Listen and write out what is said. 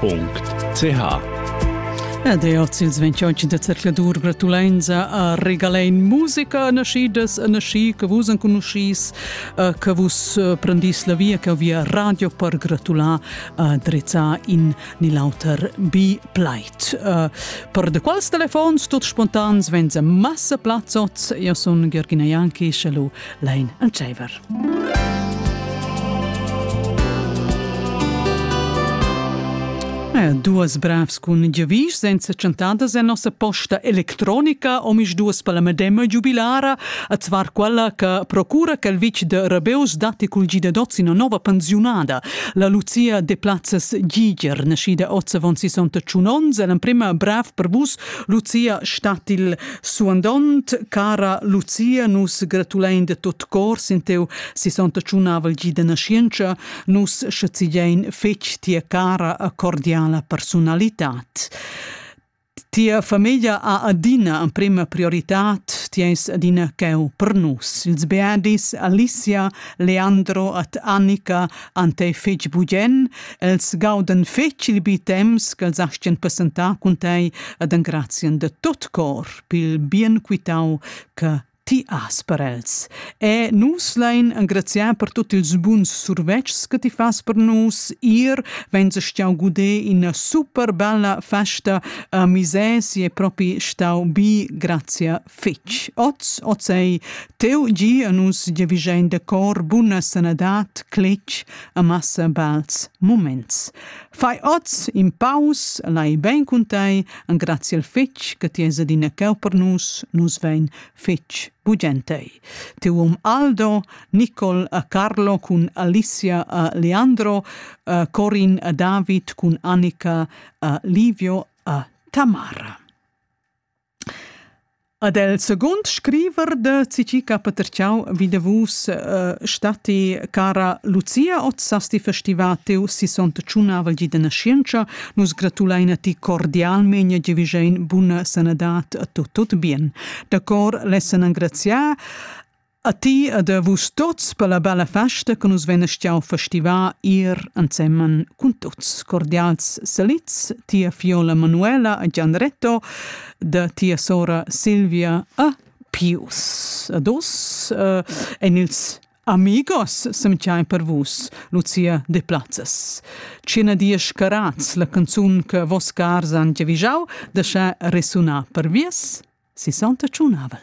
www.ch Ed è oz ils 28 da zercladur gratulenza a regalain musica naschidas e naschi che vus enconuschis, eh, che vus eh, prendis la via, che via radio per gratular a drizzar in nill'auter bi pleit. Eh, per de quals telefons, tuts spontans, venza massa plazzots, io sun Ghergina Janki, shallo lein entscheiver. Eh, duas bravs cun giavisch senza chantadas en nossa posta electronica omis duas per la medema giubilara a zvar quella che procura che il vic de Rabeus datti cul gida dots una nova pensiunada. La Lucia de Plazzas Giger, nascida 1861 l'emprima brav per vus, Lucia statil Suandont, cara Lucia, nus gratulein de tot cor sin teu sissontaciunavel gi de nascienza, nus schazigein fetg tia cara a cordiala personalitat. Tia famiglia ha adina emprema prioritad, ti eis adina cheu per nus. Ils beadis Alicia, Leandro, at Annika, Ante fetg bugen, els gaudan fetg il bi temps ch'els astgan presentar cun tei ed engrazien de tot cor pil bien quitau che ti has per els. E nus lein engraziar per tutti ils buns survetschs che ti fas per nus. Ir, wenn se stau gude in una super bella festa a Misesi è proprio stau bi grazie fitg oz, oz ei teu gi a nus giavischein de cor buna sanadad, cletg a massa bals moments. Fai oz in paus, lai ben cun tei, engrazi el fitg che ti es adina ceu per nus, nus vein fitg bugentei. Teu um Aldo, Nicol a Carlo cun Alicia a Leandro, uh, Corin a David cun Annika a Livio a Tamara. Ad el seguond scriver da Cicica Patertschau vi davos statti cara Lucia, oz sast ti festivar teu sessontachunnavel gi da naschientscha. Nus gratulain a ti cordialmein e giavischein buna sanadad a tu tut bien. Da cor lessan engraziar A ti ed a vus tuts per la bella festa che nus vein stiau festivar ir ensemen cun tuts. Cordials salits tia fiola Manuela e Gianretto, da tia sora Silvia e Pius. Ad us eh, en ils amigos semgiai per vus, Lucia de Plazzas. Cina dies carats la canzun che vos cars han giavijau, da sche resuna per vies, si santa tschunavel.